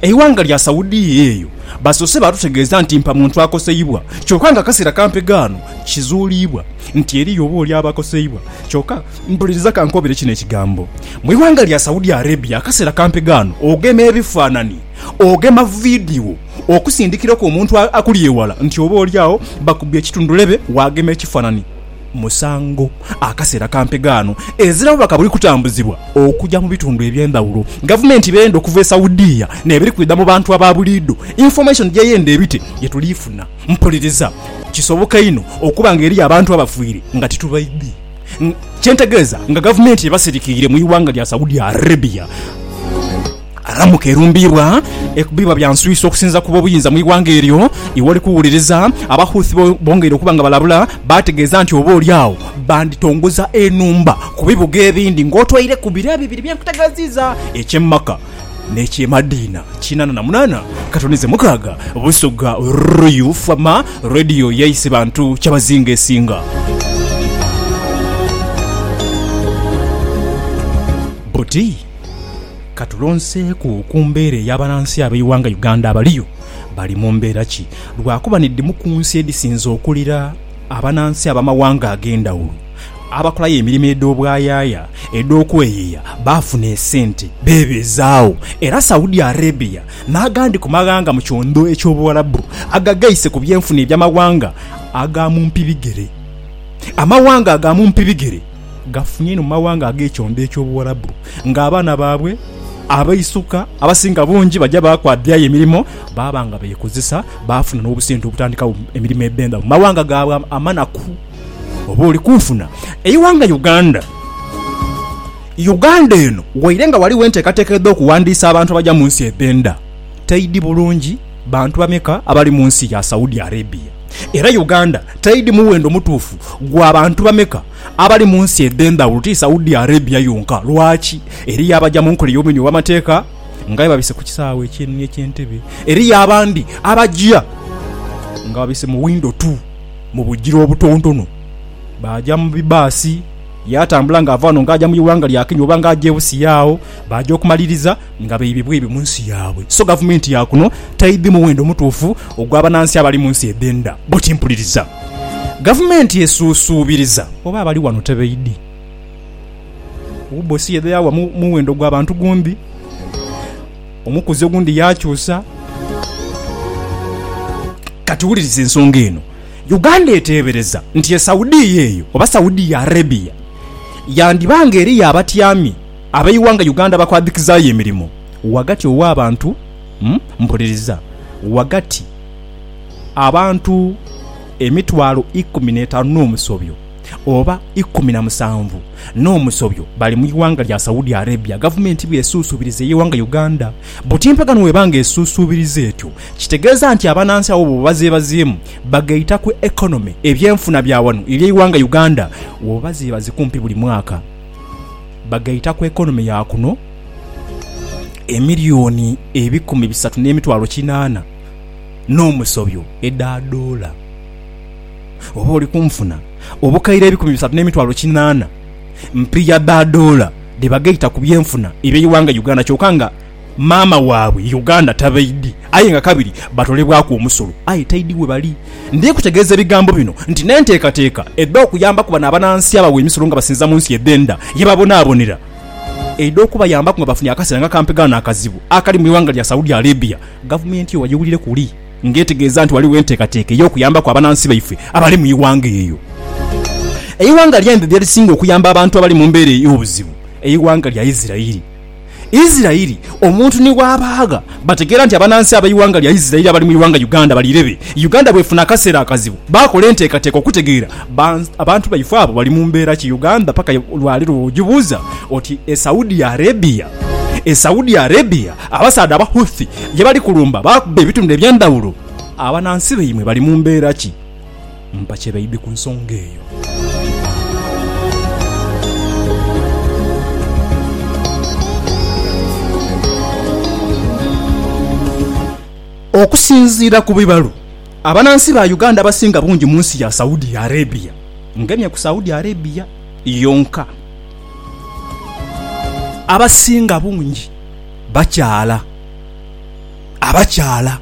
Eighanga lya Saudia eyo basoose baatutegeeza nti mpa muntu akoseibwa kyoka nga akaseera kampe ghano kizuuliibwa nti eriyo oba oli aba akoseibwa kyoka Mpuliriza kankobere kino ekigambo. Mu ighanga lya Saudi Arabia akaseera kampe ghano ogema ebifaanani, ogema vidiyo okusindikiraku omuntu akuli ewala nti oba oli agho bakubye ekitundhulebe waagema ekifanani. musango akaseera ka mpegaano ezirawo bubaka buli kutambuzibwa okuja mu bitundu ebyendhawulo gavumenti beyenda okuva e saudia nebiri kwidha mu bantu ababuliidho information gyeyenda ebite gyetuliifuna mpuliriza kisoboka inho okuba nga eriyo abantu abafiire nga titubaidhi kyentegeeza nga gavumenti ebasirikiire mu iwanga lya saudia arabia. Ramuka! erumbiibwa ekubibwa bya nswisa okusinziira ku b'obuyinza mu ighanga eryo. Iwe oli kuwuliriza? Aba Houthi bongeire okuba nga balabula, baategeeza nti oba oli agho banditongoza enhumba ku bibuga ebindi ng'otwaire ku biro ebibiri bye nkutegeeziiza, eky'e Makkah n'eky'e Madiina. Kinaana na munaana katonize mukaaga Busugha Ruyu Fama Radio yaise bantu kyabazinga esinga buti. Ka tulonseeku ku mbeera eya banansi ab'eighanga Uganda abaliyo. Bali mu mbeera ki? Lwakuba ni dhimu ku nsi edhisinze okulira abanansi ab'amaghanga ag'endhawulo abakolayo emirimo edh'obwayaaya edh'okweyeya baafuna esente beebeezaagho. Era Saudi Arabia n'agandi ku maghanga mu kyondho eky'Obuwarabu agagheise ku byenfuna eby'amaghanga aga mumpi bigere. Amaghanga aga mumpi bigere gafunye inho mu mawanga ag'ekyombo eky'Obuwarabu, nga abaana baabwe abaisuka abasinga bungi baja baakwabyayo emirimo baaba nga beekozesa, baafuna n'obusente obutandikagho emirimo ebemba mu mawanga gaabwe amanaku. Oba oli kunfuna? Eighanga Uganda. Uganda eno waire nga ghaligho enteekateeka edh'okuwandiisa abantu abaja mu nsi edh'enda, teidhi bulungi. Bantu bameka abali mu nsi ya Saudi Arabia, era Uganda teidhi muwendo mutuufu gwa bantu bameka abali mu nsi edh'endhawulo, ti Saudi Arabia yonka. Lwaki? Eriyo abaja mu nkola ey'obumenyi obw'amateeka nga aye babise ku kisaawe ekyenhe eky'Entebbe. Eriyo abandi abaja nga babise mu windo tu mu bugira obutontono. Baaja mu bibaasi, ye atambula ng'ava ghano ng'aja mu ighanga lya Kenya oba ng'aja e Busia agho. Baaja okumaliriza. nga baibi bwaibi mu nsi yaabwe, so gavumenti ya kuno taidhi muwendo mutuufu ogw'abanansi abali mu nsi edh'endha. Bwo kimpuliriza, gavumenti esuusuubiriza oba abali wano tebaidhi wubosi yedha yawa muwendo gwa bantu gundi, omukuzi ogundi yaakyusa. Kati wuliriza ensonga eno. Uganda eteebereza nti e Saudia eyo oba Saudia Arabia yandiba nga eriyo abatyami, Abeighanga Uganda bakwadhikizaayo emirimo ghagati ow'abantu Mpuliriza, ghagati abantu emitwalo ikumi n'etaanu n'omusobyo oba ikumi na musanvu n'omusobyo bali mu ighanga lya Saudi Arabia gavumenti bw'esuusuubiriza ey'eighanga Uganda. Butimpagano bw'eba nga esuusuubiriza etyo, kitegeeza nti abanansi abo bwoba bazeebazeemu bagaita ku economy, ebyenfuna, bya wano eri eighanga Uganda, bwoba bazeebaze kumpi buli mwaka. bagaita ku economy ya kuno emiliyoni ebikumi bisatu n'emitwalo kinaana n'omusobyo edha doola. Oba oli kunfuna obukaire ebikumi bisatu n'emitwalo kinaana mpiiya dha doola dhe bagaita ku byenfuna eby'eighanga Uganda kyoka nga maama waabwe ye Uganda tabaidhi aye nga kabiri batolebwaku omusolo aye taidhi webali. Ndhi kutegeeza ebigambo bino nti n'enteekateeka edh'okuyambaku bano abanansi abawa emisolo nga basinza mu nsi edh'enda ye babonaabonera eidha okubayambaku nga bafunye akaseera nga kampi ghano akazibu akali mu ighanga lya Saudi Arabia gavumenti eyo wagiwulire kuli nga etegeeza nti ghaligho enteekateeka ey'okuyambaku abanansi baife abali mu ighanga eyo. Eighanga lya India lye lisinga okuyamba abantu abali mu mbeera ey'obuzibu eighanga lya Israel. Isiraeli omuntu ni bw'abaagha bategeera nti abanansi ab'eighanga lya Isiraeli abali mu ighanga Uganda bali irebe. Uganda bw'efuna akaseera akazibu baakola enteekateeka okutegeera abantu baifo abo bali mu mbeera ki. Uganda paka lwa leero bw'ogibuuza oti e Saudi Arabia, e Saudi Arabia abasaadha aba Houthi ye bali kulumba baakubba ebitundhu eby'endhawulo, abanansi baimwe bali mu mbeera ki? Mpa kye baidhi ku nsonga eyo. Okusinziira ku bibalo, abanansi ba Uganda abasinga bungi mu nsi ya Saudi Arabia. Ngemye ku Saudi Arabia yonka. Abasinga bungi bakyala. Abakyala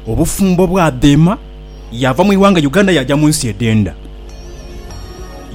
obufumbo bwadheema. yaava mu ighanga Uganda yaaja mu nsi edh'endha.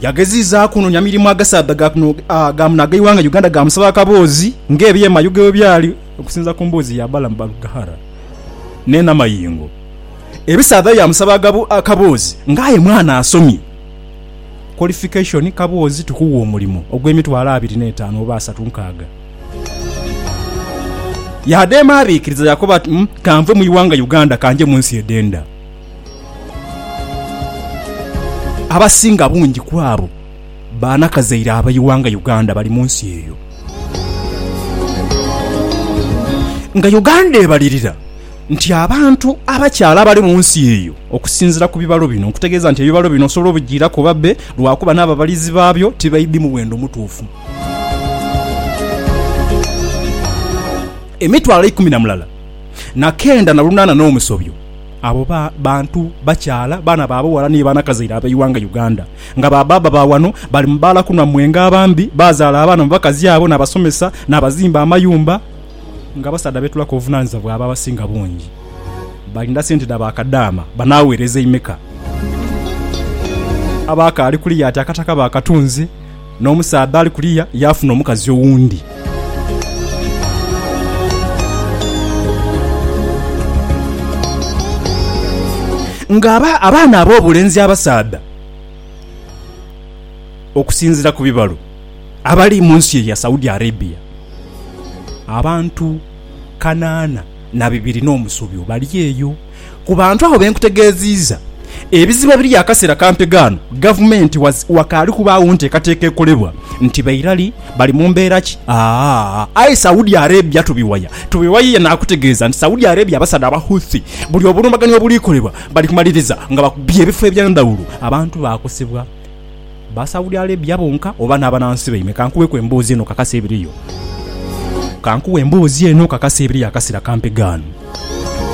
Yageziizaaku okunoonia mirimu agasaadha ga kuno ga muno ag'eighanga Uganda gaamusaba akaboozi ng'ebyema Yuga bwe byali okusinziira ku mboozi ya Balaam Barugahara ne Namayingo. Ebisaadha byamusaba akaboozi ng'aye mwana asomye, qualification, Kaboozi tukuwa omulimo ogw'emitwalo abiri n'etaanu oba asatu nkaaga. Ya dheema abikiriza ya koba ati, Kanve mu ighanga Uganda kanje mu nsi edhenda. Abasinga bungi ku abo baana kazaire aba ighanga Uganda bali mu nsi eyo. Nga Uganda ebalirira nti abantu abakyala abali mu nsi eyo okusinzira ku bibalo bino nkutegeeza nti ebibalo bino osobola obijiiraku oba bbe lwakuba n'ababalizi baabyo tibaidhi muwendo mutuufu. Emitwalo eikumi na mulala na kenda na lunaana n'omusobyo abo ba bantu bakyala, baana ba bughala ni banakazaire ab'eighanga Uganda nga ba baaba ba wano bali mu baala kunwa mwenge abambi baazaala abaana mu bakazi abo n'abasomesa n'abazimba amayumba nga abasaadha beetulaku obuvunaanyizibwa bwabwe abasinga bungi balinda sente dha ba kadaama banaaweereza imeka? Abaakaali kuliya ati akataka bakatunze N'omusaadha ali kuliya yaafuna omukazi owundi. Nga abaana ab'obulenzi abasaadha, okusinzira ku bibalo, abali mu nsi eya Saudi Arabia, abantu kanaana na bibiri n'omusobyo bali eyo. Ku bantu abo be nkutegeeziiza, ebizibu ebiri akaseera kampi ghano gavumenti wakaali kubaagho nteekateeka ekolebwa. Nti ba irali, bali mu mbeera ki? Aa, aye Saudi Arabia tubiwaya, tubiwaya ye naakutegeeza nti Saudi Arabia abasaadha aba Houthi buli obulumbaganyi obulikolebwa bali kumaliriza nga bakubye ebifo ebya ndhawulo. Abantu baakosebwa ba Saudi Arabia bonka oba n'abanansi baimwe? Ka nkuweeku emboozi eno okakase ebiriyo. Ka nkuwe emboozi eno okakase ebiriyo akaseera kampi ghano.